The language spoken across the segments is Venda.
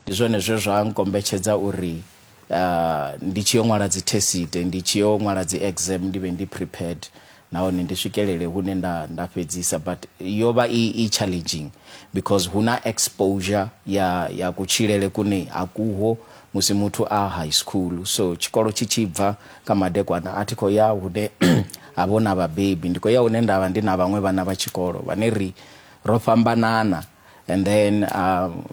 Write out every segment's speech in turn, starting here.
Ndi zwone zwe zwa nkombetshedza uri ndi tshi yo ṅwala dzithesite, ndi tshi yo ṅwala dzi exam ndi vhe ndi prepared nahone ndi swikelele hune nda nda fhedzisa but yo vha i i challenging because hu na exposure ya ya kutshilele kune a kuho musi muthu a high school so tshikolo tshi tshi bva kha madekwana a thi khou ya hune ha vho na vhabebi ndi khou ya hune nda vha ndi na vhaṅwe vhana vha tshikolo vhane ri ro fhambanana and then um,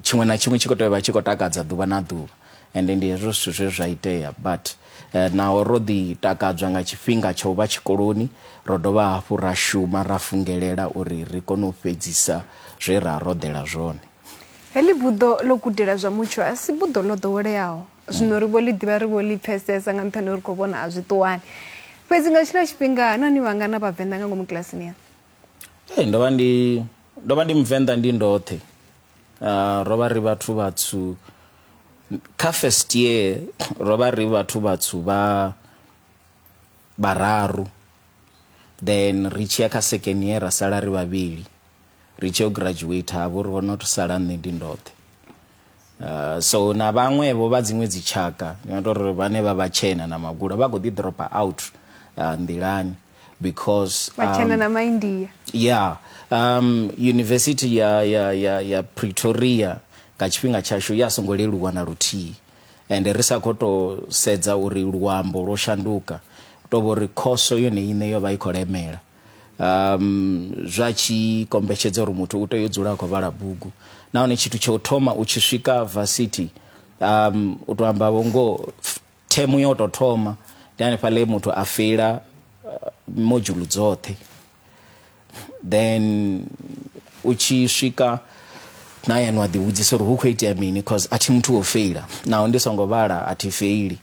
tshiṅwe na tshiṅwe tshi khou tea vha tshi khou takadza ḓuvha na ḓuvha and ndi hezwo zwithu zwe zwa itea but uh, naho ro ḓi takadzwa nga tshifhinga tsha u vha tshikoloni ro dovha hafhu ra shuma ra fungelela uri ri kone u fhedzisa zwe ra roḓela zwone heḽi buḓo ḽo gudela zwa mutsho a si buḓo ḽo ḓoweleaho zwino ri vho ḽi ḓivha ri vho ḽi pfesesa nga nṱhani uri khou vhona a zwi ṱuwani fhedzi nga tshila tshifhinga nani vhangana vhavenḓa nga ngomu kilasini yanu Hey, ndo vha ndi ndo vha ndi muvenḓa ndi ndoṱhe uh, ro vha ri vhathu vhatswu kha first year ro vha ri vhathu vhatswu vha vhararu then ri tshiya kha second year ra sala ri vhavhili ri tshi yo graduate havho ri vhona u sala nṋe ndi ndoṱhe Uh, so na vhaṅwevho vha dziṅwe dzitshaka ni nga tori vhane vha vhatshena na magula vha kho ḓi dropa out uh, nḓilani because vhatshena um, na maindia yeah um, university ya, ya, ya, ya pretoria nga tshifhinga tshashu ya songo leluwa na luthihi and ri sa khou tou sedza uri luambo lwo shanduka to vho ri khoso yone ine yo vha i khou lemela um, zwa tshi kombetshedza uri muthu u tea u dzula a khou vhala bugu nahone tshithu tsha u thoma u tshi swika varsity um, u to amba vhongo themu yo to thoma ndi hanefha le muthu a feila uh, modzhulu dzoṱhe then u tshi swika na yena wa ḓivhudzisa uri hu khou itea mini cause a thi muthu wo feila naho ndi songo vhala a thi feili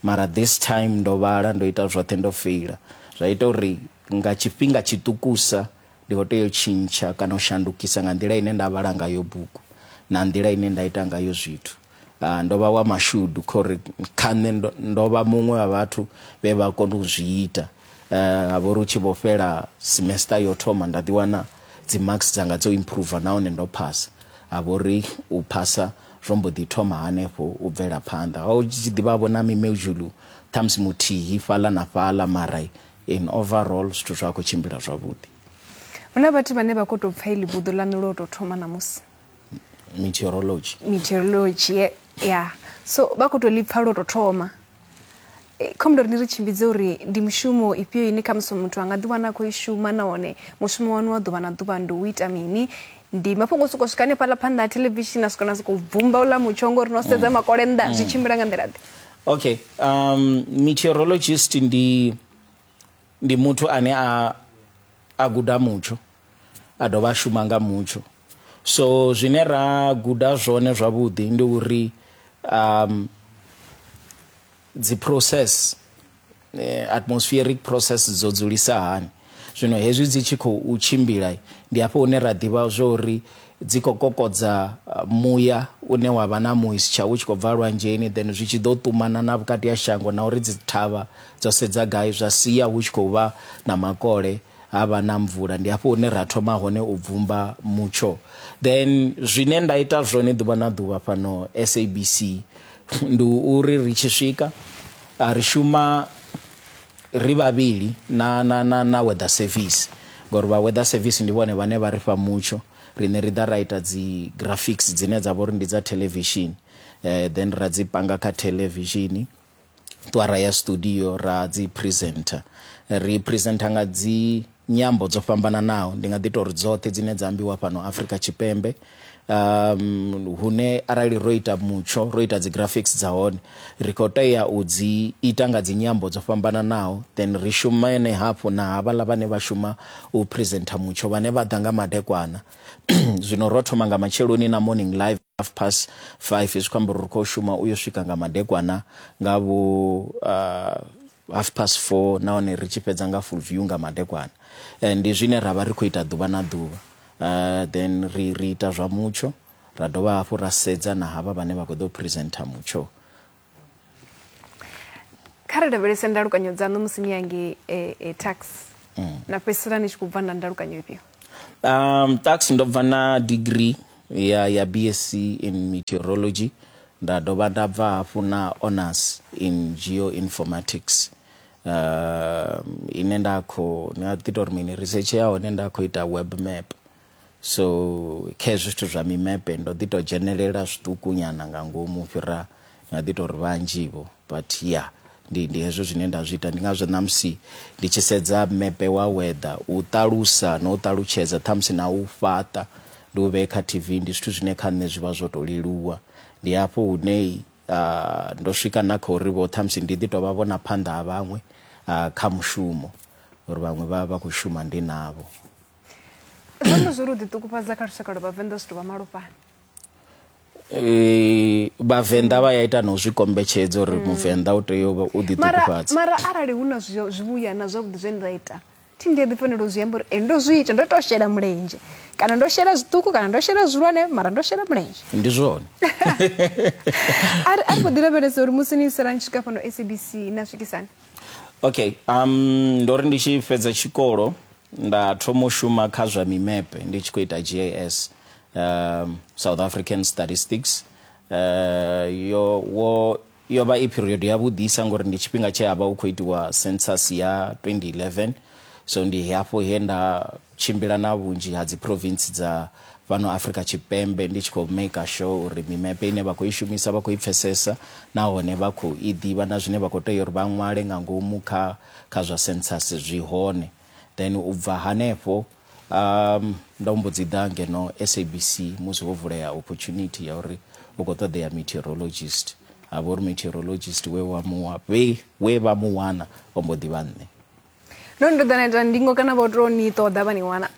Mara this time ndo vhala, ndo ita zwoṱhe ndo feila. Zwa ita uri nga tshifhinga tshiṱukusa ndi khou tea u tshintsha kana u shandukisa nga nḓila ine nda vhala ngayo bugu na nḓila ine nda ita ngayo zwithu. Ndo vha wa mashudu kha uri kha nṋe ndo vha muṅwe wa vhathu vhe vha kona u zwi ita. Uh, ha vha uri u tshi vho fhela semester yo thoma nda ḓiwana dzi marks dzanga dzo improve nahone ndo phasa ha vha uri u phasa zwo mbo ḓi thoma hanefho u bvela phanḓa ho tshi ḓivha vho na mimeudzhulu ṱhamusi muthihi fhaḽa na fhaḽa mara in overall zwithu zwa khou tshimbila zwavhuḓi hu na vhathu vhane vha khou tou pfa ili buḓo ḽa nulo tou thoma ṋamusi meteorology meteorology ya yeah. so vha khou tou ḽi pfa lwo tou thoma kha mundo ri ni ri tshimbidze uri ndi mushumo ifhio ine khamusi muthu a nga ḓiwana a khou i shuma nahone mushumo wanu wa ḓuvha na ḓuvha ndi u ita mini ndi mafhungo o sokou swika hanefhaḽa phanḓa ha thelevishini a swika na sokou bvumba uḽa mutsho ngori no sedza mm. makole nnḓa zwi mm. tshimbila nga nḓila ḓe okay um meteorologist ndi ndi muthu ane a a guda mutsho a dovha a shuma nga mutsho so zwine ra guda zwone zwavhuḓi ndi uri um dzi process eh, atmospheric process dzo dzulisa hani zwino hezwi dzi tshi khou tshimbila ndi hafho hune ra ḓivha zwo uri dzi khou kokodza muya une wa vha na moisture u tshi khou bva lwanzheni then zwi tshi ḓo ṱumana na vhukati ha shango na uri dzi thavha dzo sedza gai zwa sia hu tshi khou vha na makole ha vha na mvula ndi hafho hune ra thoma hone u bvumba mutsho then zwine nda ita zwone ḓuvha na ḓuvha fhano SABC ndi uri ri tshi swika ri shuma ri vhavhili na, na, na, na weather service ngori vha weather service ndi vhone vhane vha ri fha mutsho riṋe ri ḓa ra ita dzi graphics dzine dza vha uri ndi dza television eh, then ra dzi panga kha television ṱuwa ra ya studio ra dzi presenter ri presenter nga dzi nyambo dzo fhambananaho ndi nga ḓi tori dzoṱhe dzine dza ambiwa fhano Afrika Tshipembe um hune arali ro ita mutsho ro ita dzi graphics dza hone ri khou tea u dzi ita nga dzi nyambo dzo fhambananaho then ri shumane hafhu na havhaḽa vhane vha shuma u presenter mutsho vhane vha ḓa nga madekwana zwino ro thoma nga matsheloni na morning live half past five zwi khou amba uri ri khou shuma uyo swika nga madekwana nga vho uh, half past four nahone ri tshi fhedza nga full view nga madekwana eh, ndi zwine ra vha ri khou ita ḓuvha na ḓuvha uh, then ri, ri ita zwa mutsho ra dovha hafhu ra sedza na havha vhane vha khou ḓo presenter mutsho kha ri lavhelese ndalukanyo dzaṋu musi ni yange e, e, tax mm. na fhedzisela ni tshi khou bva na ndalukanyo ifhio um tax ndo bva na degree ya ya bsc in meteorology nda dovha nda bva hafhu na honors in geoinformatics uh, ine nda khou ni a ḓi tou ri mini research ya hone nda khou ita web map So kha hezwi zwithu zwa mimepe ndo ḓi tou dzhenelela zwiṱukunyana nga ngomu fhira nga ḓi tou ri vhanzhi-vho but ya ndi ndi hezwo zwine nda zwi ita ndi ngazwo ṋamusi ndi tshi sedza mepe wa weather u ṱalusa na u ṱalutshedza ṱhamusi na u fhaṱa ndi u vhee kha tv ndi zwithu zwine kha nṋe zwi vha zwo tou leluwa ndi hafho hune uh, ndo swika na kha uri vho ṱhamusi ndi ḓi tou vha vhona phanḓa ha vhaṅwe uh, kha mushumo uri vhaṅwe vha vha khou shuma ndi navho zwone zwo ri u ḓiṱukufhadza kha lushaka lwa vhavenḓa zwithu vha malofhani Eh, vhavenḓa vha ya ita na u zwi kombetshedza uri muvenḓa u tea u vha- u mara ḓiṱukufhadza mara arali hu na zwi- zwivhuya na zwavhuḓi zwe nda ita thi ndi a ḓi fanela u zwi amba uri e ndo zwi ita ndo tou shela mulenzhe kana ndo shela zwiṱuku kana ndo shela zwihulwane mara ndo shela mulenzhe ndi zwone a ri a ri khou ḓi lavhelesa uri musi ni isela ni swika fhano sabc na swikisani okay um ndo ri ndi tshi fhedza tshikolo nda thoma u shuma kha zwa mimepe ndi tshi khou ita gas um, south african statistics uh, yo wo yo vha i period yavhuḓisa ngori ndi tshifhinga tshe a vha hu khou itiwa census ya 2011 so ndi hafho he nda tshimbila na vhunzhi ha dziphrovintsi dza fhano Afrika Tshipembe ndi tshi khou maker sure uri mimepe ine vha khou i shumisa vha khou i pfesesa nahone vha khou i ḓivha na zwine vha khou tea uri vha ṅwale nga ngomu kha kha zwa census zwi hone. Then u bva hanefho ndo mbo dzi ḓa ngeno SABC musi ho vulea opportunity ya uri hu khou ṱoḓea meteorologist ha vha uri meteorologist we wa mu we we vha mu wana o mbo ḓi vha nṋe. no ni to ḓa na ita ndingo kana vho to ni ṱoḓa vha ni wana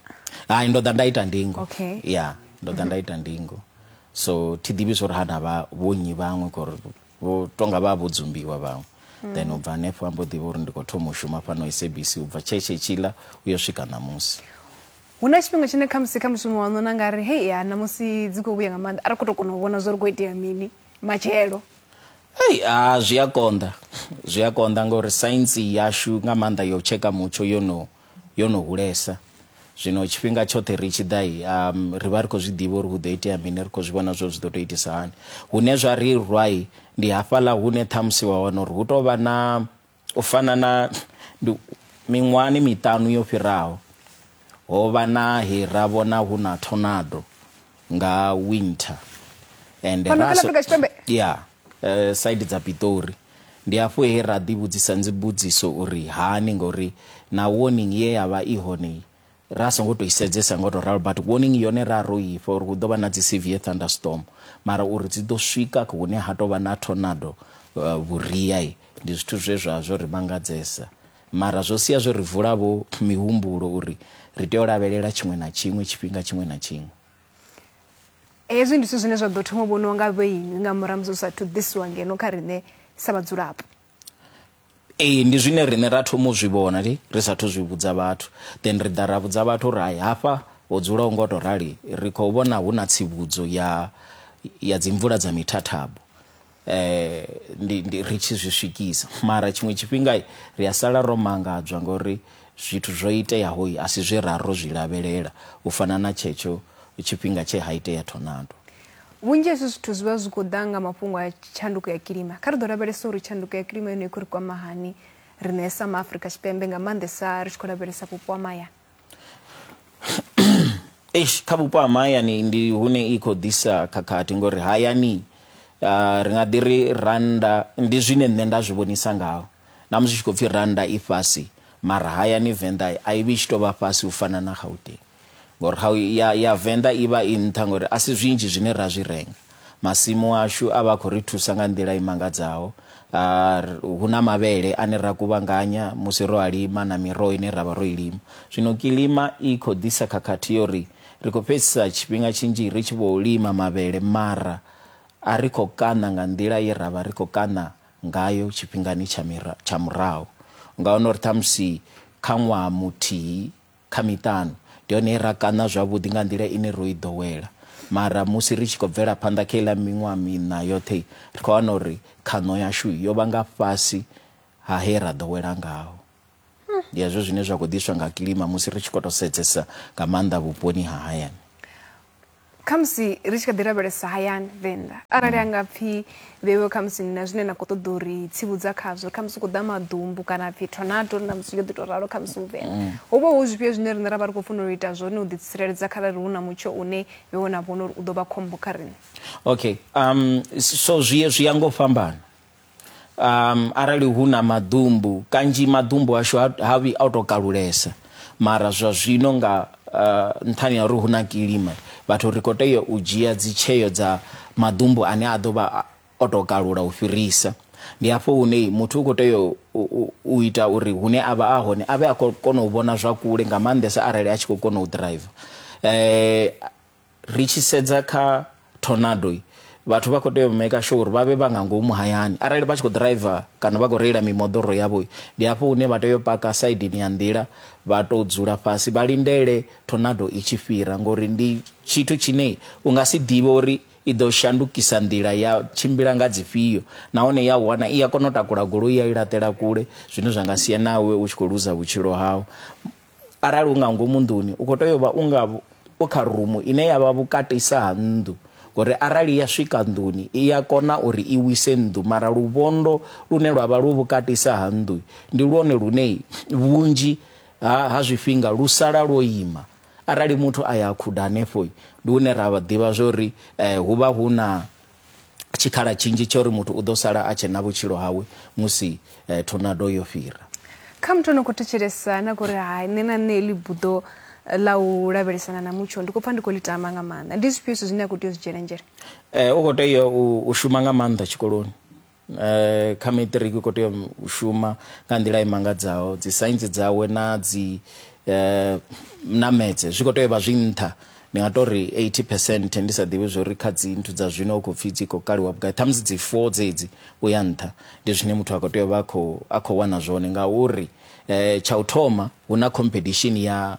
hai ndo ḓa nda ita ndingo okay. ya ndo ḓa nda ita ndingo so thi ḓivhi zwo ri ha na vha vhonyi vhaṅwe kori vho tonga vha vho dzumbiwa vhaṅwe mm. then u bva hanefho ambo ḓivha uri ndi khou thoma u shuma fhano sabc u bva tshetshe tshiḽa u yo swika ṋamusi hu na tshifhinga tshine khamusi kha mushumo waṋu na nga ri hei ya ṋamusi dzi khou vhuya nga maanḓa a ri khou tou kona u vhona zwo ri khou itea mini matshelo Hey, ah, zwi a konḓa zwi a konḓa ngauri saintsi yashu nga maanḓa yo tsheka mutsho yo no yo no hulesa zwino tshifhinga tshoṱhe ri tshi ḓa um, ri vha ri khou zwi ḓivha uri hu ḓo itea mini ri khou zwi vhona zwo zwi ḓo tou itisa hani hune zwa ri rwai ndi hafhaḽa hune ṱhamusi wa wana uri hu tou vha na U fana na ndi miṅwahani miṱanu yo fhiraho, ho vha na he ra vhona hu na tornado nga winter and Fhano ra kha ḽa so- Afrika Tshipembe? ya eh, side dza pitori ndi hafho he ra ḓivhudzisa ndzibudziso uri hani ngori na warning ye ya vha i hone ra songo to isedzesa ngo to ralo but warning yone ra ro ifha uri hu ḓo vha na dzi severe thunderstorm mara uri dzi ḓo swika hune ha tou vha na tornado uh, vhuria ndi zwithu zwe zwa zwo ri mangadzesa mara zwo sia zwo ri vula vho mihumbulo uri ri tea u lavhelela tshiṅwe na tshiṅwe tshifhinga tshiṅwe na tshiṅwe hezwi ndi zwithu zwine zwa ḓo thoma vhoniwa nga vhoinwi nga murahu musi zwi sathu ḓisiwa ngeno kha riṋe sa vhadzulapo ee ndi zwine riṋe ra thoma u zwi vhona ri sathu zwi vhudza vhathu then ri ḓa ra vhudza vhathu uri hai hafha ho dzula u ngo to rali ri khou vhona hu na tsivhudzo ya ya dzimvula dza mithathabo eh ndi ndi ri tshi zwi swikisa mara tshiṅwe tshifhinga ri a sala ro mangadzwa ngori zwithu zwo iteaho a si zwe ra ro zwi lavhelela u fana na tshetsho tshifhinga tshe ha itea thonando Vhunzhi ha hezwi zwithu zwi vha zwi khou ḓa nga mafhungo a tshanduko ya kilima. Kha ri ḓo lavhelesa uri tshanduko ya kilima yone i khou ri kwama hani riṋe sa maafrika tshipembe nga maanḓesa ri tshi khou lavhelesa vhupo ha mahayani eish kha vhupo ha mahayani ndi hune i khou ḓisa khakhathi ngori hayani uh, ri nga ḓi ri randa ndi zwine nṋe nda zwi vhonisa ngaho na musi tshi khou pfhi randa i fhasi mara hayani venḓa a i vhi tshi tou vha fhasi u fana na gauteng Ngori how ya, ya Venḓa i vha i nṱha ngori a si zwinzhi zwine ra zwi renga. Masimu ashu a vha a khou ri thusa nga nḓila i mangadzaho. A, hu na mavhele ane ra kuvhanganya musi ro a lima na miroho ine ra vha ro i lima. Zwino kilima i khou ḓisa khakhathi yo ri ri khou fhedzisa tshifhinga tshinzhi ri tshi vhou lima mavhele mara a ri khou kaṋa nga nḓila ye ra vha ri khou kaṋa ngayo tshifhingani tsha, tsha murahu. U nga wana uri ṱhamusi kha ṅwaha muthihi, kha miṱanu. Ndi hone he ra kaṋa zwavhuḓi nga nḓila ine ro i ḓowela. Mara musi ri tshi khou bvela phanḓa kha iḽa miṅwaha miṋa yoṱhe, ri khou wana uri khaṋo yashu yo vha nga fhasi ha he ra ḓowela ngaho. Ndi hezwo zwine zwa khou ḓiswa nga kilima musi ri tshi khou tou sedzesa nga maanḓa vhuponi ha hayani. khamusi ri tshi kha ḓi lavhelesa hayani venḓa arali a nga pfhi vhewe khamusi na zwine na khou ṱoḓa uri tsivhudza khazwo khamusi u khou ḓa maḓumbu kana pfhi tornado na musi yo ḓi tou ralo khamusi u venḓa mm. ho vha hu zwifhio zwine riṋe ra vha ri khou funa u ita zwone u ḓitsireledza kharali hu na mutsho une vhewe na vhona uri u ḓo vha khombo kha riṋe okay um so zwi zwi ya ngo fhambana um, arali hu na maḓumbu kanzhi maḓumbu ashu ha vhi o to kalulesa mara zwa zwino nga uh, nṱhani ya uri hu na kilima vhathu ri khou tea u dzhia dzitsheo dza maḓumbu ane a ḓo vha o to kalula u fhirisa ndi hafho hune muthu u khou tea u ita uri hune a vha a hone a vhe a khou kona u vhona zwa kule nga maanḓesa arali a tshi khou kona u driver um Ri tshi sedza kha tornado vhathu vha khou tea u maker sure uri vha vhe vha nga ngomu hayani arali vha tshi khou driver kana vha khou reila mimoḓoro yavho ndi hafho hune vha tea u paka saidini ya nḓila vha tou dzula fhasi vha lindele tornado i tshi fhira ngori ndi tshithu tshine u nga si ḓivhe uri i ḓo shandukisa nḓila ya tshimbila nga dzifhio nahone ya wana i a kona u takula goloi ya i laṱela kule zwine zwa nga sia nawe u tshi khou luza vhutshilo hau Arali u nga ngomu nḓuni, u khou tea u vha u nga u kha rumu ine ya vha vhukatisa ha nnḓu, ngori arali ya swika nḓuni, i a kona uri i wise nnḓu. Mara luvhondo lune lwa vha lwu vhukatisa ha nnḓu ndi lwone lune vhunzhi ha, ha zwifhinga lu sala lwo ima. Arali muthu a ya a khuda hanefho, ndi hune ra ḓivha zwa uri hu vha hu na. tshikhala tshinzhi tsha uri muthu u ḓo sala a tshe na vhutshilo hawe musi eh, tornado yo fhira kha muthu ano khou thetshelesa na kuri hai nṋe na nṋe ḽi buḓo ḽa u lavhelesana na mutsho ndi khou pfa ndi khou ḽi tama nga maanḓa ndi zwifhio zwithu zwine a khou tea u zwi dzhiela nzhele um u khou tea u shuma nga maanḓa tshikoloni eh, kha matric u khou tea u shuma nga nḓila i mangadzaho dzi saintsi dzawe na dzi eh, namedze zwi khou tea u vha zwi nṱha ndi nga tori 80 percent ndi sa ḓivhi zwo ri kha dzi nthu dza zwino u khou pfhi dzi khou kaliwa vhugai ṱhamusi dzi four dzedzi u ya nṱha ndi zwine muthu a khou tea u vha a khou wana zwone ngauri um tsha u thoma hu na competition ya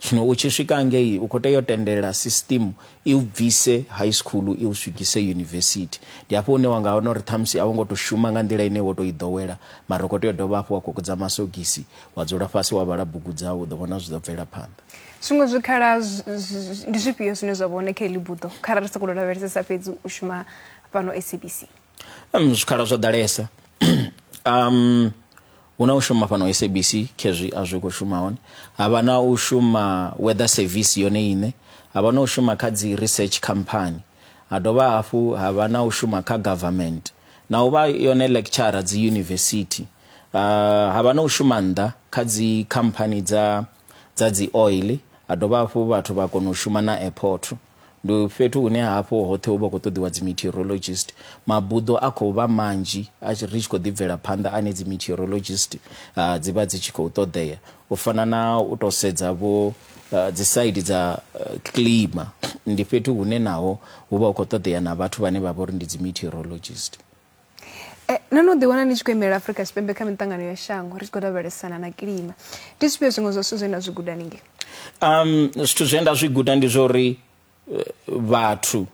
Zwino u tshi swika ngei, u khou tea u tendela sisitimu i u bvise high school i u swigise yunivesithi. Ndi hafho hune wa nga wana uri ṱhamusi a wo ngo tou shuma nga nḓila ine wo tou i ḓowela, mara u khou tea u dovha hafhu wa kokodza masogisi, wa dzula fhasi wa vhala bugu dzau, u ḓo vhona zwi ḓo bvela phanḓa. Zwiṅwe zwikhala ndi zwifhio zwine zwa vha hone kha heḽi buḓo kharali ri sa khou lavhelesesa fhedzi u shuma fhano SABC? Um, zwikhala zwo ḓalesa. um, Hu na u shuma fhano SABC khezwi a zwi khou shuma hone. Ha vha na u shuma Weather Service yone iṋe. Ha vha na u shuma kha dzi research company. Ha dovha hafhu ha vha na u shuma kha government. Na u vha yone lecturer dzi university. Ha vha na u shuma nnḓa kha dzi company dza. dza dzi oil ha dovha hafhu vhathu vha kona u shuma na airport ndi fhethu hune hafhu hoṱhe hu vha khou ṱoḓiwa dzi meteorologist mabuḓo a khou vha manzhi a tshi- ri tshi khou ḓi bvela phanḓa ane dzi meteorologist ah, dzi vha dzi tshi khou ṱoḓea u fana na u tou sedza vho ah, dzi side dza ah, clima ndi fhethu hune naho hu vha hu khou ṱoḓea na vhathu vhane vha vha uri ndi dzi meteorologist Eh, no no ḓiwana ni tshi khou imelela afurika tshipembe kha miṱangano ya shango ri tshi khou lavhelesana na kilima ndi zwifhio zwiṅwe zwa zwithu zwe na zwi guda ningei um zwithu zwe nda zwi guda ndi zwa uri eh, vhathu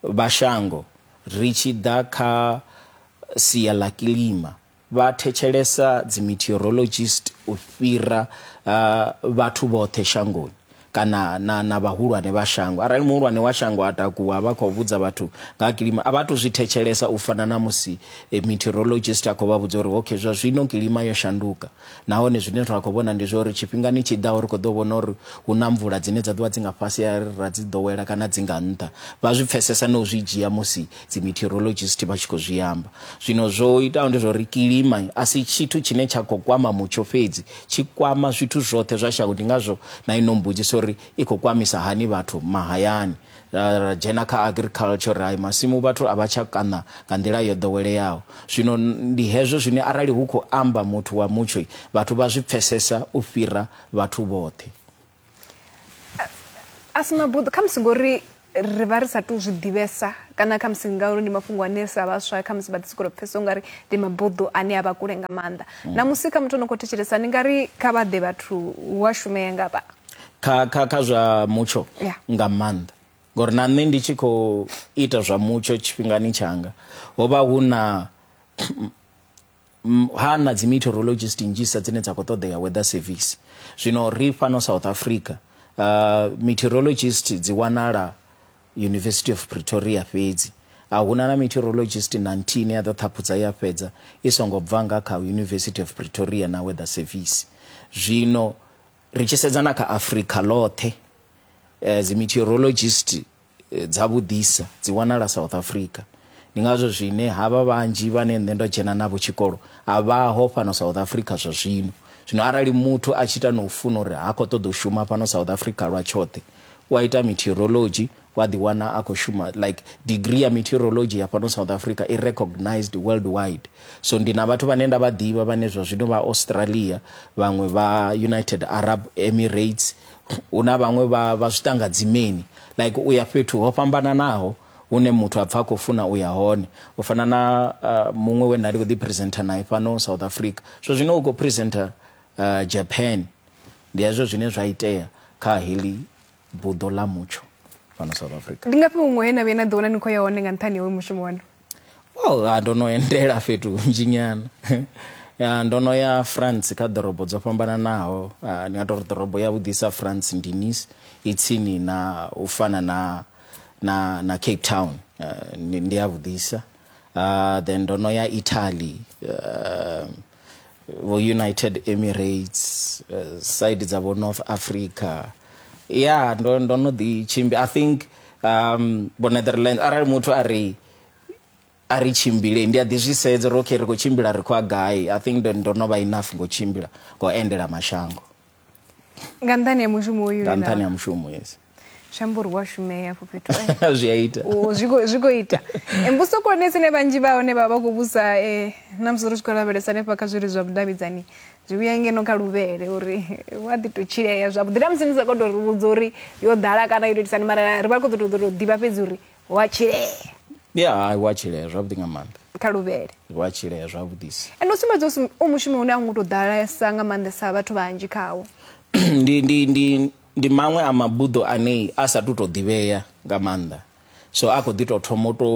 vha shango ri tshi ḓa kha sia ḽa kilima vha thetshelesa dzi meteorologist u fhira uh, vhathu vhoṱhe shangoni kana na, na vhahulwane vha shango. Arali muhulwane wa shango a takuwa a vha khou vhudza vhathu nga ha kilima, a vha tou zwi thetshelesa u fana na musi eh, meteorologist a khou vha vhudza uri okay, zwa zwino kilima yo shanduka, nahone zwine ra khou vhona ndi zwa uri tshifhingani tshi ḓaho ri khou ḓo vhona uri hu na mvula dzine dza ḓovha dzi nga fhasi a ra dzi ḓowela kana dzi nga nṱha. Vha zwi pfesesa na u zwi dzhia musi dzi meteorologist vha tshi khou zwi amba. Zwino zwo itaho ndi zwa uri kilima a si tshithu tshine tsha khou kwama mutsho fhedzi, tshi kwama zwithu zwoṱhe zwa shango ndi ngazwo na ino mbudziso uri i khou kwamisa hani vhathu mahayani ra ra dzhena kha agriculture ri hai masimu vhathu a vha tsha kaṋa nga nḓila yo ḓoweleaho zwino ndi hezwo zwine arali hu khou amba muthu wa mutsho vhathu vha zwi pfesesa u fhira vhathu vhoṱhe a si mabuḓo khamusi ngori ri vha ri sa tou zwi ḓivhesa kana khamusi ngauri ndi mafhungo ane sa vhaswa khamusi vha ḓi sokou pfhesa ungari ndi mabuḓo ane a vha kule nga maanḓa mm. na musi kha muthu o no khou thetshelesa ndi nga ri kha vha ḓe vhathu hu a shumea nga vha kha kha kha zwa mutsho nga maanḓa ngori na nṋe ndi tshi khou ita zwa mutsho tshifhingani tshanga ho vha hu na ha na dzi meteorologist nnzhisa dzine dza khou ṱoḓea weather service zwino ri fhano south africa uh, meteorologist dzi wanala university of pretoria fhedzi a huna na meteorologist na nthihi ine ya ḓo ṱhaphudza ya fhedza i songo bva nga kha university of pretoria na weather service zwino ri tshi sedza na kha africa ḽoṱhe uh, dzi meteorologist dza vhuḓisa dzi wanala South Africa. Ndi ngazwo zwine havha vhanzhi vhane nṋe ndo dzhena navho tshikolo a vhaho fhano South Africa zwa zwino. Zwino arali muthu a tshi ita no funa uri ha khou ṱoḓa u shuma fhano South Africa lwa tshoṱhe, u a ita meteorology wa ḓi wana a khou shuma like degree ya meteorology ya fhano South Africa i recognised world wide. So ndi na vhathu vhane nda vha ḓivha vhane zwa zwino vha Australia, vhaṅwe vha United Arab Emirates, hu na vhaṅwe vha vha zwi tanga dzimeni like u ya fhethu ho fhambananaho hune muthu a pfa a khou funa u ya hone u fana na uh, muṅwe we nda ndi khou ḓi presenter naye fhano south africa zwo zwino u khou presenter uh, japan ndi hezwo zwine zwa itea kha heḽi buḓo ḽa mutsho fhano south africa ndi ngafhi huṅwe he na vhuya na ḓiwana ni khou ya hone nga nṱhani hoyu mushumo wanu well ah, ndo no endela fhethu hunzhi nyana ya ndo no ya france kha ḓorobo dzo fhambananaho ah, ndi nga tou ri ḓorobo ya vhudisa france ndi nice i tsini na u fana na na na cape town ah, ndi ndi ya vhudisa Ah, then ndo no ya italy ah, vho united emirates uh, side dza vho north africa ya yeah, ndo, ndo no ḓi tshimbi i think um, vho netherlands arali muthu a ri a ri tshimbile ndi a ḓi zwi sedza uri okay ri khou tshimbila ri khou a gai i think ndo no vha enough ngo tshimbila ngo endela mashango nga nṱhani ha mushumo uyu nga nṱhani ha mushumo yes shamburwa shumeya afho fhethu eh. zwi a ita oh, zwi khou ita eh, mbuso khulwane tsine vhanzhi vha hone vha vha khou vhusa um eh, na musi ri tshi khou lavhelesa hanefha kha zwiri zwa vhudavhidzani zwi vhuya ngeno kha luvhele uri wa ḓi tou tshilea zwavhuḓi na musi ni sa khou tou ri vhudza uri yo ḓala kana yo tou itisani mara ri vha khou ḓo tou ḓivha fhedzi uri wa tshilea ya hai wa tshilea zwavhuḓi nga maanḓa kha luvhele wa tshilea zwavhuḓisa ende u sumbedza u mushumo une a ngo tou ḓalesa nga maanḓesa vhathu vhanzhi khawo ndi ndi ndi ndi maṅwe a mabuḓo ane a sa tu to ḓivhea nga maanḓa so a khou ḓi tou thoma u to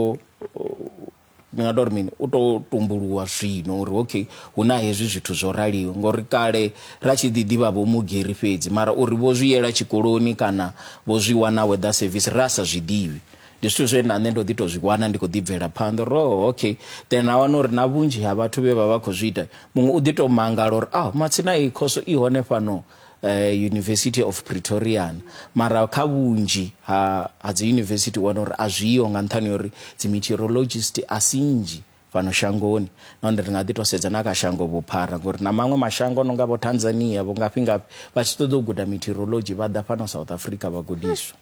ndi nga tori mini u to tumbuluwa zwino uri okay hu na hezwi zwithu zwo raliho ngori kale ra tshi ḓi ḓivha vho mugeri fhedzi mara uri vho zwi yela tshikoloni kana vho zwi wana weather service ra sa zwi ḓivhi ndi zwithu zwe na nṋe ndo ḓi to zwi wana ndi khou ḓi bvela phanḓa ro oh, okay then a wana uri na vhunzhi ha vhathu vhe vha vha khou zwi ita muṅwe u ḓi to mangala uri a ah, matsina iyi khoso i hone fhano eh, university of pretorian mara kha vhunzhi ha, ha dzi university wana uri a zwiho nga nṱhani ya uri dzi meteorologist a si nnzhi fhano shangoni nahone ri nga ḓi to sedza na kha shango vhuphara ngori na maṅwe mashango a no nga vho tanzania vho ngafhi ngafhi vha tshi ṱoḓa u guda meteorology vha ḓa fhano south africa vha gudiswa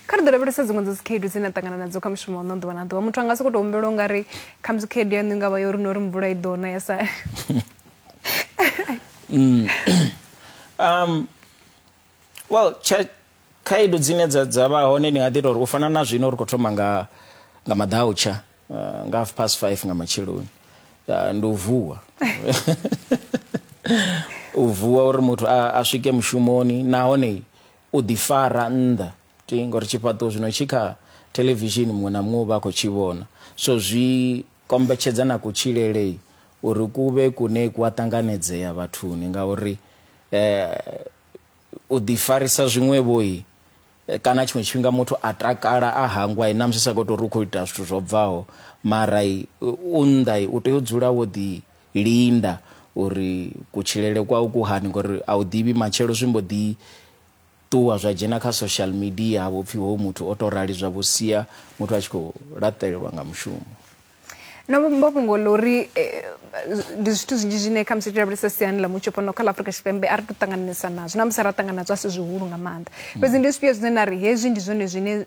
kha ri ḓo lavhelesa dziṅwe dza dzikhaedu dzine a ṱangana nadzo kha mushumo wa no ḓuvha na ḓuvha muthu anga soko to humbela unga ri kha musi khaedu yaṋu i nga vha yo ri no ri mvula i ḓo na ya sa mm. um well khaedu dzine dza dza vha hone ni nga ḓi tori u fana na zwino ri khou thoma nga nga maḓautsha uh, nga half past five nga matsheloni uh, ndi u vuwa u vuwa uri muthu a, a swike mushumoni nahone U ḓifara nnḓa ti ngori tshifhaṱuwo zwino tshi kha thelevishini muṅwe na muṅwe u vha a khou tshi vhona so zwi kombetshedza na kutshilele uri ku vhe kune ku a ṱanganedzea vhathuni ngauri u ḓifarisa zwiṅwevhoi kana tshiṅwe tshifhinga muthu a takala a hangwa i namusi sa khou tou ri u khou ita zwithu zwo bvaho mara u nnḓa u tea u dzula wo ḓi linda uri kutshilele kwau ku hani ngori a u ḓivhi matshelo zwi mbo ḓi ṱuwa zwa dzhena kha social media ha vho pfhi hoyu muthu o to rali zwa vho sia muthu a tshi khou laṱelelwa nga mushumo no mbo fhungo ḽa uri eh, ndi zwithu zwinzhi zwine kha musi lavhelesa siani ḽa mutsho fhano kha ḽa afurika tshipembe a ri to ṱangananisa nazwo na musi ra ṱangana nazwo a si zwihulu nga maanḓa mm. fhedzi ndi zwifhio zwine na ri hezwi ndi zwone zwine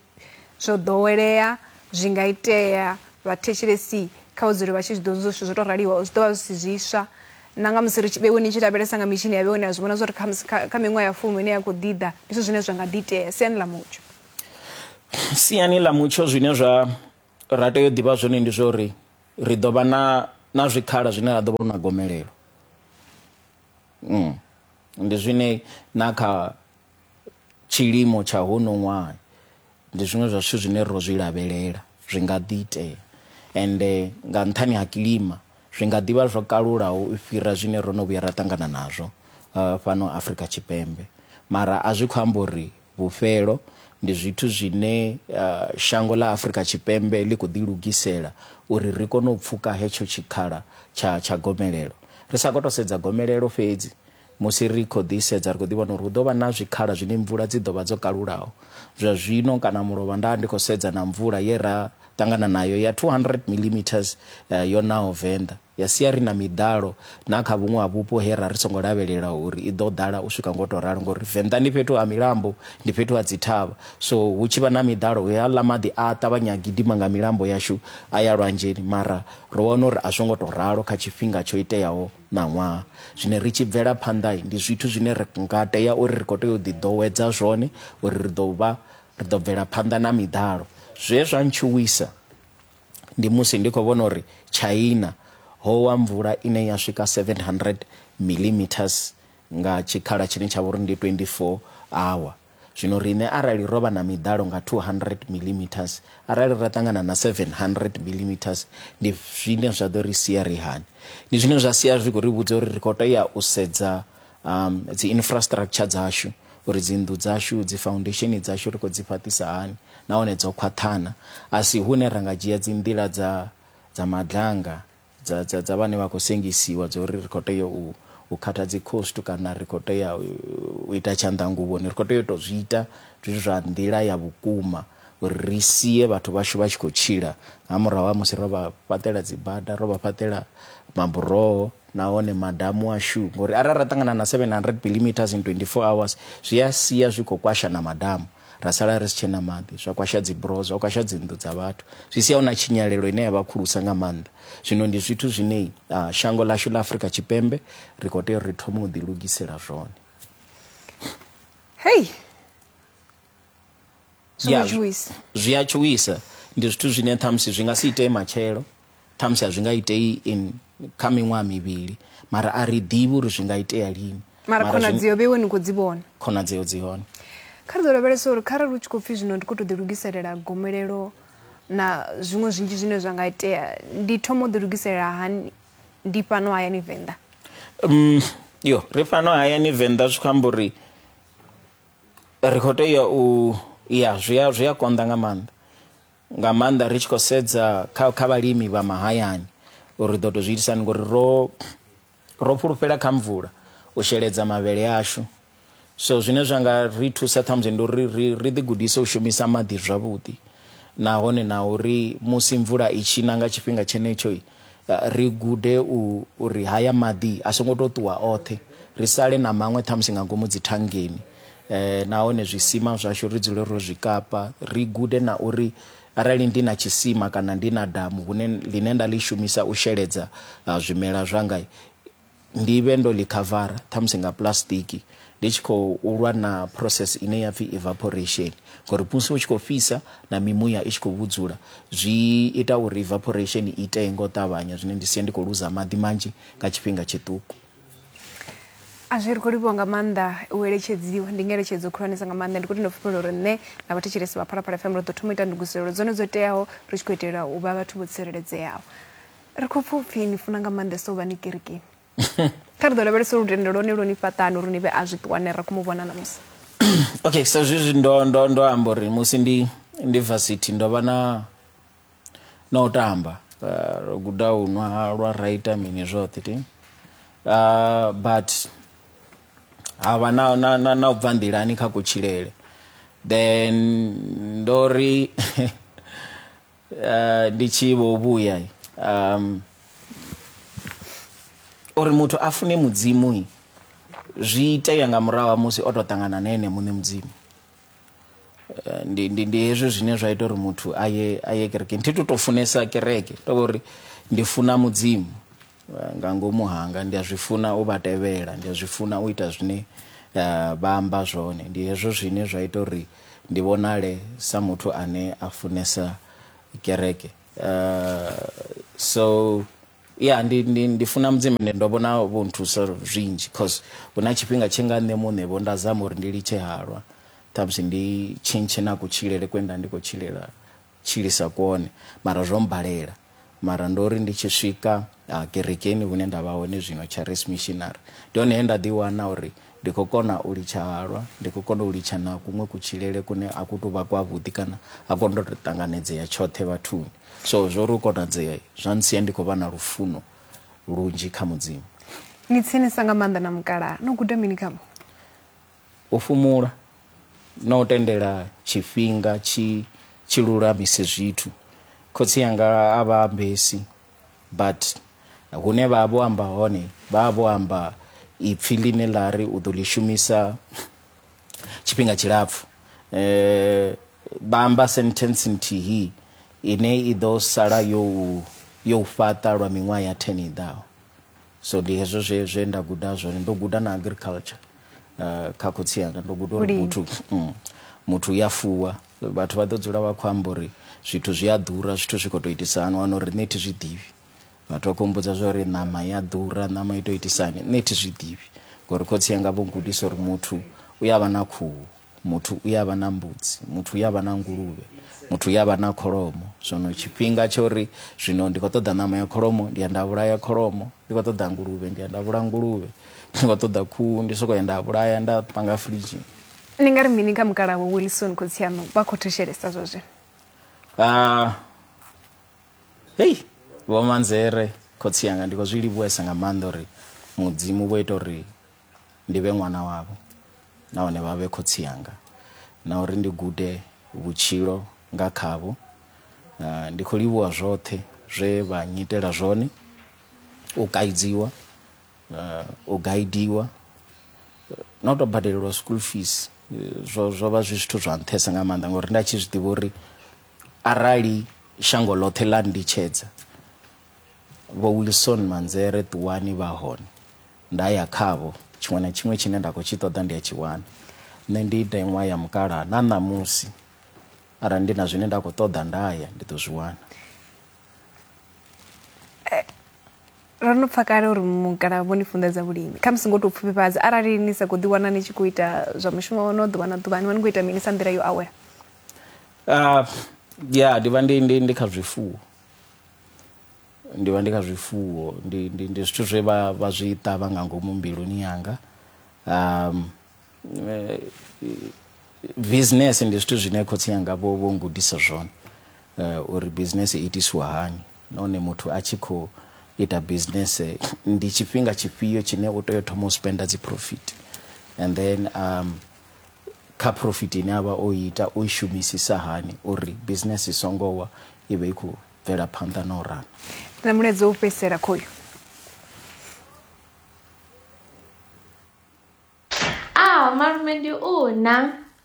Zwo ḓowelea, zwi nga itea vhathetshelesi kha vha dzule vha tshi zwi ḓivha zwithu zwo tou raliho, zwi ḓo vha zwi si zwiswa na nga musi ri tshi, vheiwe ni tshi lavhelesa nga mitshini ya vheiwe ni a zwi vhona zwa uri kha musi kha kha miṅwaha ya fumi ine ya khou ḓi ḓa ndi zwithu zwine zwa nga ḓi itea siani ḽa mutsho. Siani ḽa mutsho zwine zwa ra tea u ḓivha zwone ndi zwa uri ri ḓo vha na na zwikhala zwine ra ḓo vha hu na gomelelo ndi zwine na kha tshilimo tsha hono ṅwaha ndi zwiṅwe zwa zwithu zwine ro zwi lavhelela zwi nga ḓi itea ende nga nṱhani ha kilima zwi nga ḓivha zwo kalulaho u fhira zwine ro no vhuya ra ṱangana nazwo uh, fhano Afrika Tshipembe mara a zwi khou amba uri vhufhelo ndi zwithu zwine uh, shango ḽa Afrika Tshipembe ḽi khou ḓi lugisela uri ri kone u pfuka hetsho tshikhala tsha tsha gomelelo ri sa khou to sedza gomelelo fhedzi Musi ri khou ḓisedza, ri khou ḓi vhona uri hu ḓo vha na zwikhala zwine mvula dzi ḓo vha dzo kalulaho. Zwa zwino kana mulovha nda vha ndi khou sedza na mvula ye ra ṱangana nayo ya 200 millimetres yo naho Venḓa, ya sia ri na miḓalo na kha vhuṅwe ha vhupo he ra ri songo lavhelela uri i ḓo ḓala u swika nga u tou ralo ngauri Venḓa ndi fhethu ha milambo, ndi fhethu ha dzithavha. So hu tshi vha na miḓalo, heaḽa maḓi a a ṱavhanya a gidima nga milambo yashu a ya lwanzheni mara ro wana uri a zwo ngo tou ralo kha tshifhinga tsho iteaho. ṋaṅwaha. Zwine ri tshi bvela phanḓa ndi zwithu zwine ri nga tea uri ri khou tea u ḓiḓowedza zwone uri ri ḓo vha ri ḓo bvela phanḓa na miḓalo. Zwe zwa ntshuwisa ndi musi ndi khou vhona uri China ho wa mvula ine ya swika 700 millimetres nga tshikhala tshine tsha vha uri ndi 24 hour. Zwino riṋe arali ro vha na miḓalo nga 200 millimetres, arali ra ṱangana na 700 millimetres, ndi zwine zwa ḓo ri sia ri hani? Ndi zwine zwa sia zwi khou ri vhudza uri ri khou tea u sedza um, dzi infrastructure dzashu uri dzinnḓu dzashu dzi foundation dzashu ri khou dzi fhaṱisa hani nahone dzo khwaṱhana a si hune ra nga dzhia dzi nḓila dza dza madlanga dza, dza, dza vhane vha khou sengisiwa dza uri ri khou tea u, u khatha dzikhostu kana ri khou tea u ita tshanḓanguvhoni ri khou tea u tou zwi ita zwi zwa nḓila ya vhukuma uri ri sie vhathu vhashu vha tshi khou tshila nga murahu ha musi ro vha fhaṱela dzibada ro vha fhaṱela maburoho nahone madamu ashu ngori arali ra ṱangana na 700 millimeters in 24 hours zwi a sia zwi khou kwasha na madamu ra sala ri si tshena maḓi, zwa kwasha dzibroho, zwa kwasha dzinnḓu dza vhathu, zwi sia hu na tshinyalelo ine ya vha khulusa nga maanḓa. Zwino ndi zwithu zwine uh, shango lashu ḽa Afrika Tshipembe ri khou tea uri ri thome u ḓilugisela zwone. Hei! Zwi a tshuwisa. Ndi zwithu zwine ṱhamusi zwi nga si itee matshelo. Ṱhamusi a zwi nga itei in kha miṅwaha mivhili, mara a ri ḓivhi uri zwi nga itea lini. Mara Mara zwi- khonadzeo vhe iwe ni khou dzi vhona. khonadzeo dzi hone. Kha ri ḓo lavhelesa uri kharali hu tshi khou pfi zwino ndi khou tou ḓilugiselela gomelelo na zwiṅwe zwinzhi zwine zwa nga itea, ndi thoma u ḓilugiselela hani ndi fhano hayani Venḓa? Um, yo, ri fhano hayani Venḓa zwi khou amba uri ri khou tea u ya zwi a zwi a konḓa nga maanḓa. nga maanḓa ri tshi khou sedza kha kha vhalimi vha mahayani uri ri ḓo tou zwi itisa hani ngori ro ro fhulufhela kha mvula u sheledza mavhele ashu so zwine zwa nga ri thusa ṱhamusi ndi uri ri ri ḓi gudise u shumisa maḓi zwavhuḓi nahone na uri musi mvula i tshi na nga tshifhinga tshenetsho ri gude u, uri haya maḓi a songo tou ṱuwa oṱhe, ri sale na maṅwe ṱhamusi nga ngomu dzithangeni, nahone zwisima zwashu ri dzule ro zwi kapa. Ri gude na uri arali ndi na tshisima kana ndi na damu hune, ḽine nda ḽi shumisa u sheledza zwimela zwanga, ndi vhe ndo ḽi khavara ṱhamusi nga pulasitiki ndi tshi khou lwa na process ine ya pfi evaporation ngori musi hu tshi khou fhisa na mimuya i tshi khou vhudzula zwi ita uri evaporation i itee nga u ṱavhanya zwine ndi sia ndi khou luza maḓi manzhi nga tshifhinga tshiṱuku a zwi ri khou livhiwa nga maanḓa u eletshedziwa ndi ngeletshedzo khulwanesa nga maanḓa ndi khou tenda fhulufhelo uri nṋe na vhathetshelesi vha phalaphala fm ro ḓo thoma u ita ndugiselelo dzone dzo teaho ri tshi khou itela u vha vhathu vho tsireledzeaho ri khou pfa upfhi ni funa nga maanḓesa u vha ni kerekeni kha ri ḓo lavhelesa lutendo lwone lwo ni fhaṱani uri ni vhe a zwi ṱuwane ra khou mu vhona namusi okay sa zwezwi ndo ndo ndo amba uri musi ndi ndi varsity ndo vha na na u tamba uh, ro guda u nwa halwa ra ita mini zwoṱhe ti uh, but ha vha na, na, na, na u bva nḓilani kha kutshilele then ndo ri uh, ndi tshi vho vhuya um uri muthu a fune mudzimu zwi itea nga murahu ha musi o tou ṱangana na ene muṋe mudzimu eh, ndi, ndi, ndi hezwi zwine zwa ita uri muthu aye aye kerekeni thi to tou funesa kereke to vha uri ndi funa mudzimu Eh, nga ngomu hanga ndi a zwi funa u vha tevhela ndi a zwi funa u ita zwine eh, vha amba zwone ndi hezwo zwine zwa ita uri ndi vhonale sa muthu ane a funesa kereke eh, so ya ndi, ndi, ndi funa mudzimu ende ndo vhona vho nthusa zwinzhi cause hu na tshifhinga tshe nga nṋe muṋe vho nda zama uri ndi litshe halwa ṱhamusi ndi tshintshe na kutshilele kwe nda ndi khou tshilela tshilisa kwone mara zwo mbalela mara ndo ri ndi tshi swika uh, kerekeni hune nda vha hone zwino charis missionary ndi hone he nda ḓi wana uri ndi khou kona u litsha halwa ndi khou kona u litsha na kuṅwe kutshilele kune a ku tou vha kwavhuḓi kana a ku ndo tou ṱanganedzea tshoṱhe vhathuni so zwo ri u konadzea zwa ntsia ndi khou vha na lufuno lunzhi kha mudzimu ni tsinisa nga maanḓa na mukalaha no guda mini khavho U fhumula na u tendela tshifhinga tshi tshi lulamise zwithu. Khotsi anga a vha ambesi but hune vha vho amba hone vha vho amba ipfi ḽine ḽa ri u ḓo ḽi shumisa tshifhinga tshilapfu vha amba sentence nthihi ine i ḓo sala yo yo fhaṱa lwa miṅwaha ya 10 i ḓaho. so ndi hezwo zwe zwe nda guda zwone ndo guda na agriculture uh, kha khotsi yanga ndo guda uri muthu mm, muthu u ya fuwa vhathu vha ḓo dzula vha khou amba uri zwithu zwi a ḓura zwithu zwi khou tou itisa hani wana uri nṋe thi zwi ḓivhi vhathu vha khou mbudza zwa uri ṋama ya ḓura ṋama i tou itisani nṋe thi zwi ḓivhi ngori khotsi yanga vho gudisa uri muthu u ya vha na khuhu muthu u ya vha na mbudzi muthu u ya vha na nguluvhe muthu u ya vha na kholomo zwino tshifhinga tsha uri zwino ndi khou ṱoḓa ṋama ya kholomo ndi ya nda vhulaya kholomo ndi khou ṱoḓa nguluvhe ndi ya nda vhulaya nguluvhe ndi khou ṱoḓa khuhu ndi sokou ya nda vhulaya nda panga firidzhini ni nga ri mini kha mukalaha wa wilson khotsi aṋu vha khou thetshelesa zwa zwino Ah, hei vhomanzere khotsi yanga ndi khou zwi livhuwesa nga maanḓa uri mudzimu vho ita uri ndi vhe ṅwana wavho nahone vha vhe khotsi anga na uri ndi gude vhutshilo nga khavho ah, ndi khou livhuwa zwoṱhe zwe vha nyitela zwone u kaidziwa ah, u gaidiwa na u tou badelelwa school fees eh, zwo zwo vha zwi zwithu zwa nṱhesa nga maanḓa ngauri nda tshi zwi ḓivha uri arali shango ḽoṱhe ḽa nditshedza vho wilson manzere ṱuwani vha hone Nda ya khavho, tshiṅwe na tshiṅwe tshine nda khou tshi ṱoḓa ndi a tshi wana. Nṋe ndi ndeṅwa ya mukalaha, na ṋamusi arali ndi na zwine nda khou ṱoḓa nda ya ndi ḓo zwi wana. ro no pfa kale uri mukalaha vho ni funḓedza vhulimi kha musi ngo tou pfufhifhadza arali ni sa khou ḓiwana ni tshi khou ita zwa mushumo wa no ḓuvha na ḓuvha ni vha ni khou ita mini sa nḓila yo awela ah, ya ndi vha ndi ndi ndi kha zwifuwo Ndi vha ndi kha zwifuwo, ndi, ndi, ndi zwithu zwe vha, vha zwi ṱavha nga ngomu mbiluni yanga. Um, eh, business ndi zwithu zwine khotsi yanga vho, vho ngudisa zwone uh, uri business i itisiwa hani nahone muthu a tshi khou ita business ndi tshifhinga tshifhio tshine u tea u thoma u spenda dzi profit and then um, kha profit ine a vha o ita o i shumisisa hani uri business i songo wa i vhe i khou bvela phanḓa na u rana na mulaedza u fhedzisela khoyu ah malume ndi u na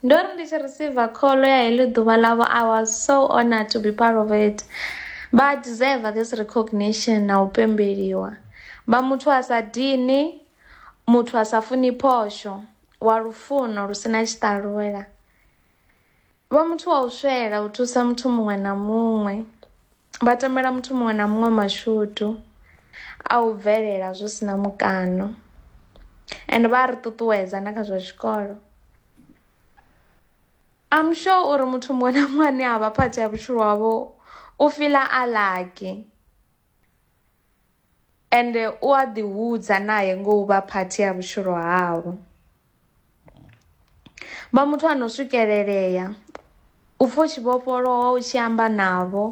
ndo ri ndi tshi receive kholo ya heḽi ḓuvha ḽavho i was so honored to be part of it vha deserve this recognition na u pembeliwa vha muthu a sa dini muthu a sa funi phosho wa lufuno lu sina tshiṱalula Vha muthu wa u swela u thusa muthu muṅwe na muṅwe, vha tamela muthu muṅwe na muṅwe mashudu a u bvelela zwi si na mukano and vha a ri ṱuṱuwedza na kha zwa tshikolo. I'm sure uri muthu muṅwe na muṅwe ane a vha part ya vhutshilo havho u fiḽa a lucky. Ende u a ḓihudza nae ngo u vha phathi ya vhutshilo havho. Vha muthu a no swikelelea, u pfa u tshi vhofholowa u tshi amba navho,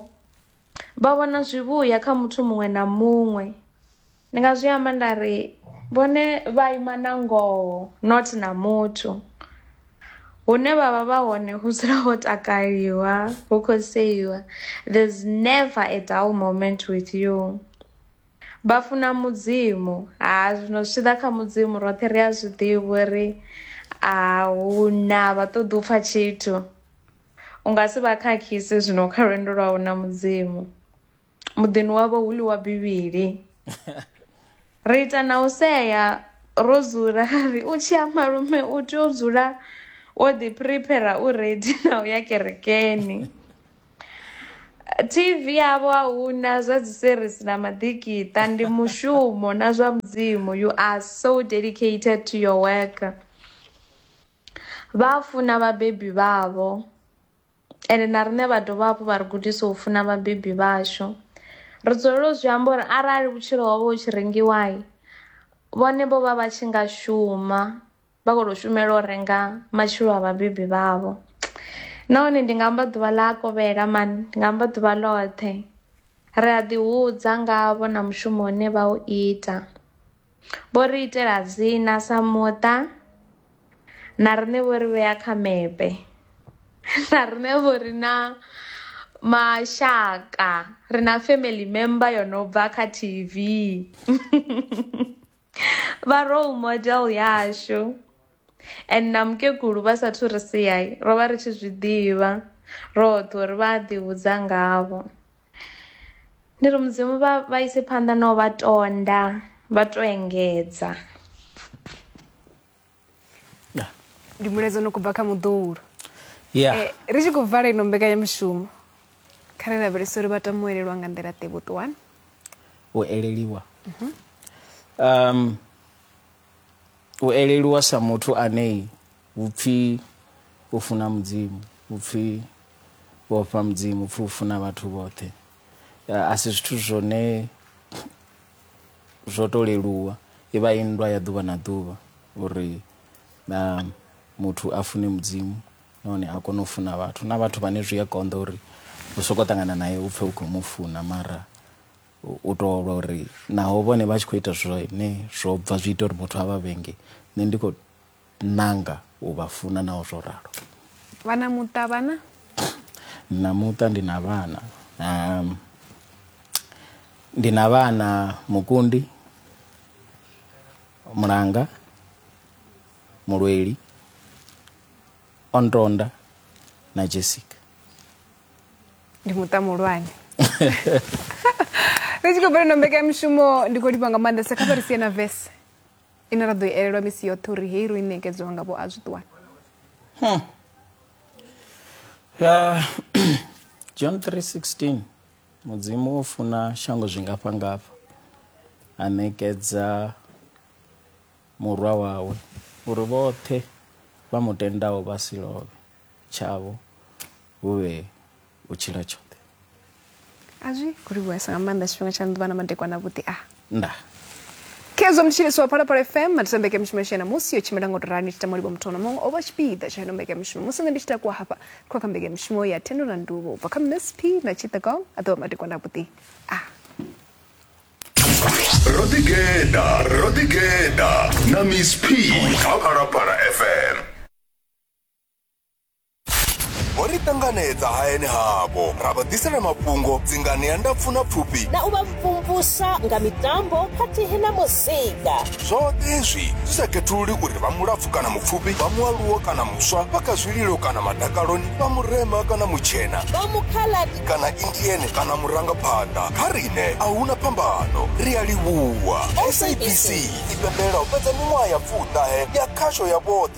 vha vhona zwivhuya kha muthu muṅwe na muṅwe. Ndi nga zwi amba nda ri vhone vha ima na ngoho not na muthu. hune vha vha vha hone hu dzula ho takaliwa hu khou seiwa there's never a dull moment with you vha funa mudzimu ha zwino zwi tshi ḓa kha mudzimu roṱhe ri a zwi ḓivha uri a hu na vha ṱoḓi u pfha tshithu u nga si vha khakhise zwino kha lwendo lwau na mudzimu muḓini wavho hu ḽiwa bivhili ri ita na u sea ro dzula ri u tshi ya malume u tea u dzula wo ḓi prepare u ready na u ya kerekeni TV yavho a huna zwa dzi series na maḓikiṱa ndi mushumo na zwa mudzimu you are so dedicated to your work vha funa vhabebi vhavho. ende na riṋe vha dovha hafhu vha ri gudisa u funa vhabebi vhashu ri dzulela u zwi amba uri arali vhutshilo hovha hu tshi rengiwai vhone vho vha vha tshi nga shuma vha khou tou shumela u renga matshilo a vhabebi vhavho nahone ndi nga amba ḓuvha ḽa a kovhela mani ndi nga amba ḓuvha ḽoṱhe ri a ḓi hudza ngavho na mushumo une vha u ita. Vho ri itela dzina sa muṱa na riṋe vho ri vhea kha mepe na riṋe vho ri na mashaka ri na family member yo no bva kha T_V vha role model yashu. and na mukegulu vha sathu ri siyai ro vha ri tshi zwi ḓivha roṱhe uri vha a ḓihudza ngavho ndi ri mudzimu vha vha ise phanḓa na u vha tonda vha to engedza ndi mulaedza no kubva kha muḓuhulu yeah. eh, ri tshi khou vala ino mbekanyamushumo kha ri lavhelesa uri vha tama u elelwa nga nḓila ḓe vhuṱuwani u eleliwa mm -hmm. um U elelwa sa muthu ane hu pfi u funa Mudzimu, hu pfi u ofha Mudzimu, hu pfi u funa vhathu vhoṱhe. A si zwithu zwone zwo to leluwa, i vha i nndwa ya ḓuvha na ḓuvha uri na muthu a fune Mudzimu nahone a kone u funa vhathu. Na vhathu vhane zwi a konḓa uri u sokou ṱangana naye u pfe u khou mu funa mara u to lwa uri naho vhone vha tshi khou ita zwine zwo bva zwi ita uri muthu a vha vhenge nṋe ndi khou nanga u vha funa naho zwo ralo vhana muṱa vhana na muṱa ndi na vhana um, ndi na vhana mukundi mulanga mulweli ontonda na jessica ndi muṱa muhulwane ri tshi khou bvela no mbekanyamushumo ndi khou livha nga maanḓesa kha vha ri sie na vese ine ra ḓo i elelwa misi yoṱhe uri hei ro i ṋekedziwa nga vho a zwi ṱuwana hmm. john 316 mudzimu o funa shango zwingafha ngafha a ṋekedza murwa wawe uri vhoṱhe vha mu tendaho vha si lovhe tshavho hu vhe u tshila tshoṱhe a zwi khou livhuhesa nga maanḓa tshifhinga tsha ḓuvha na madekwana vhuḓi a nda khezwo mutshilisi wa phalaphala fm matisa mbekanyamushumo yashu ya namusi yo tshimbila nga u torani tshi tamolibo muthu na muṅwe o vha tshipiḓa tsha ino mbekanyamushumo musi nṋe ndi tshi takuwa hafha khou kha mbekanyamushumo ya thendo na nduvo u bva kha msp na tshithagong a ḓovha madekwana vhuḓi a ro ḓigeda ro ḓigeda na miss p kha phalaphala fm vho ri ṱanganedza hayani havho ra vha ḓisela mafhungo dzingani ya ndapfu na pfufhi na u vha mvumvusa nga mitambo khathihi na muzika zwoṱhe hezwi zwi sa khethululi uri vha mulapfu kana mupfufhi vha mualuwo kana muswa vha kha zwililo kana madakaloni vha murema kana mutshena vha mukhaladi kana indiene kana murangaphanḓa kha riṋe a huna phambano ri a livhuwa sabc i pembela u fhedza miṅwaha ya pfuṱahe ya khasho ya vhoṱhe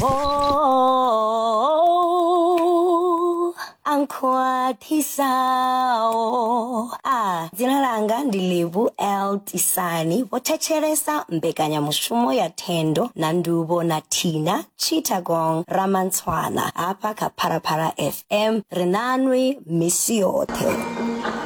Oh, ankhwathisawo a dzina langa ndi livu l tisani vho thetshelesa mbekanyamushumo ya thendo na ndubo na thina chitagong ramantswana hafha kha pharapara fm ri nanwi misi yoṱhe